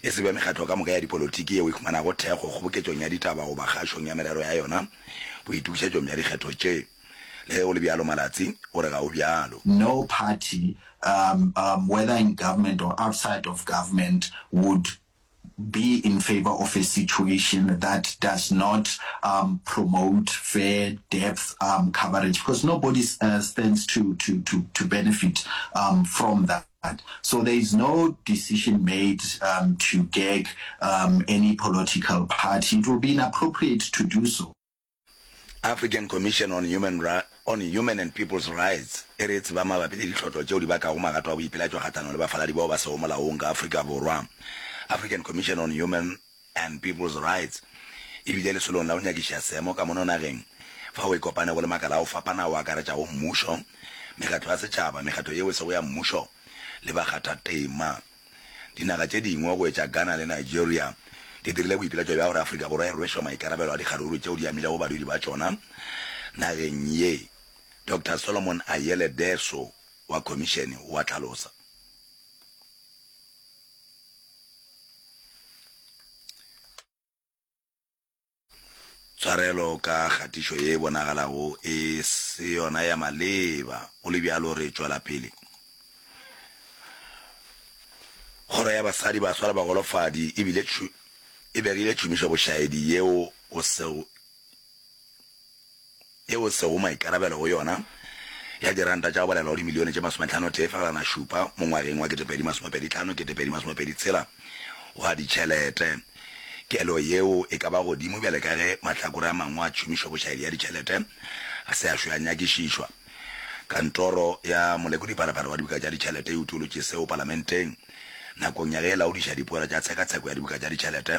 e se be mekgatlo ka moka ya dipolotiki yeo e humanago thekgo kgoboketšong ya ditaba goba kgašong ya merero ya yona boitokišetšong bja dikgetho tše. Le ge go le bjalo, Malatsi o re ga go bjalo. No party, um, um, whether in government or outside of government, would be in favour of a situation that does not, um, promote fair depth, um, coverage, because nobody, uh, stands to, to, to, to benefit, um, from that. So there is no decision made um, to gag um, any political party. It will be inappropriate to do so. African Commission on Human, on Human and People's Rights e re tseba mabapi le ditlhotlo tšeo di bakago magato a boipelatšo kgatlhanong le bafaladi bao ba sego molaong ka Afrika Borwa. African Commission on Human and People's Rights e bile lesolong la go nyakišiša seemo ka mono nageng fao e kopanego le makala a go fapana ao a akaretšago mmušo, mekgatlo ya setšhaba, mekgatlo yeo e sego ya mmušo le bakgathatema. Dinaga tše dingwe go etša Ghana le Nigeria di dirile boipiletšo bja gore Afrika Borwa e rwešwe maikarabelo a dikgaruru tšeo di amilego badudi ba tšona nageng ye, Doctor Solomon Ayele Deso wa Khomišene o a hlalosa. Tshwarelo ka kgatišo ye bonagalago e se yona ya maleba, go le bjalo re tšwela pele. Kgoro ya Basadi, Baswa le Bagolofadi e bile e begile tšhomišobošaedi yeo go sego yeo sego maikarabelo go yona ya diranta tša go balelwa go dimilione tše masometlhanotee fegelwanašupa mo ngwageng wa ketepedi masomepeditlhano ketepedi masomepeeditshela wa ditšhelete. Kelo yeo e ka ba godimo bjale ka ge mahlakore a mangwe a tšhomišo bošaedi ya ditšhelete a se a šwe a nyakišišwa. Kantoro ya Molekodipharapara wa Dibuka tša Ditšhelete e utolotše seo Palamenteng nakong ya ge e laodiša dipoelo tša tshekatsheko ya dibuka tša ditšhelete.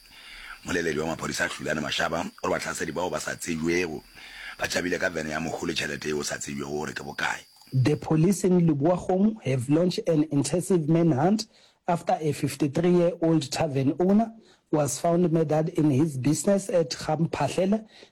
Moleledi wa maphodisa Hlulane Mashaba o re bahlasedi bao ba sa tsebjwego ba tšabile ka vene ya mohu le tšhelete yeo sa tsebjwego gore ke bokae. The police in Leboa-Kgomo have launched an intensive manhunt after a fifty three year old tarven owner was found murdered in his business at Ga Mphahlele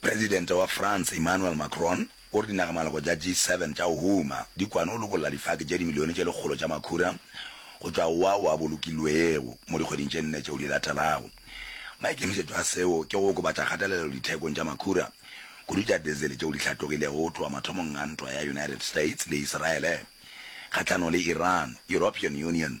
Presidente wa France Emmanuel Macron o re dinaga-maloko tša G7 tša go huma di kwane go lokolla difaki tše dimilione tše lekgolo tša makhura go tšwa go ao a bolokilwego mo dikgweding tše nne tšeo di latelago. Maikemišetšo a seo ke go okobatša kgatelelo dithekong tša makhura, kudu tša dizele tšeo di hlatogilego go tloga mathomong a ntwa ya United States le Iseraele kgahlanong le Iran, European Union,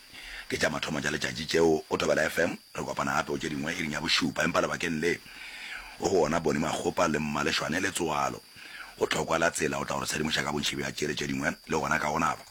Ke tša mathomo tša letšatši tšeo go Thobela FM. Re kopana gape go tše dingwe iring ya bošupa, empa lebakeng le go go ona Boni Makgopa le Mmaleshwane Letsoalo. Go thokwa la tsela o tla go re sedimoša ka bontši bja tšele tše dingwe le gona ka go naba.